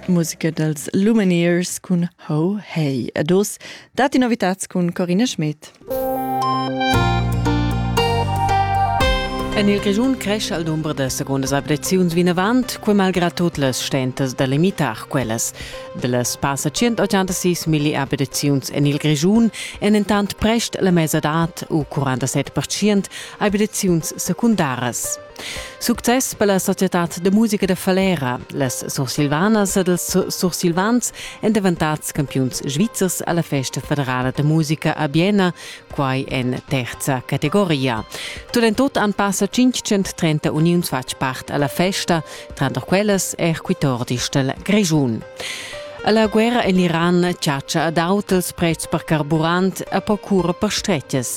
Musica dals Luminiers cun Ho Hey. Ed oz datti novitads cun Corinna Schmidt. En il Grischun cresce al dumber da segundas abitaziuns vinavant, quai malgrad tut las stentas da limitar quellas. De las passa 186 milli abitaziuns en il Grischun èn entant prest la mesadad u 47% abitaziuns secundaras. Success per la societad de musica de Falera. Las sursilvanas ed els sursilvans èn davantats campiuns svizzers alla festa federala de musica a Biena, quai en terza categoria. Tulentot han passa 530 uniuns fatg part alla festa, tranter quellas er quitordis del Grischun. La guerra en l'Iran chatscha ad autels prezs per carburant e per cura per stretches.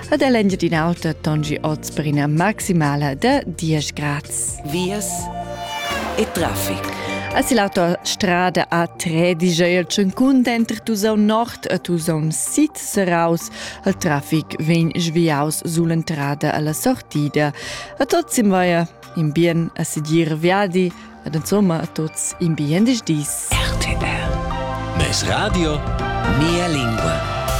ed è l'Engiadin'Alta Tongi oz per ina maximala da 10 grads. Vias e traffic. Es il autostrada A3 digl tschuncun denter Tusaun Nord e Tusaun Sid seraus. Il traffic vegn sviaus sull'entrada alla sortida. A tots im vaia in bien a sedir viadi ed insomma a tots in bien dis. RTR. Mes Radio, mia lingua.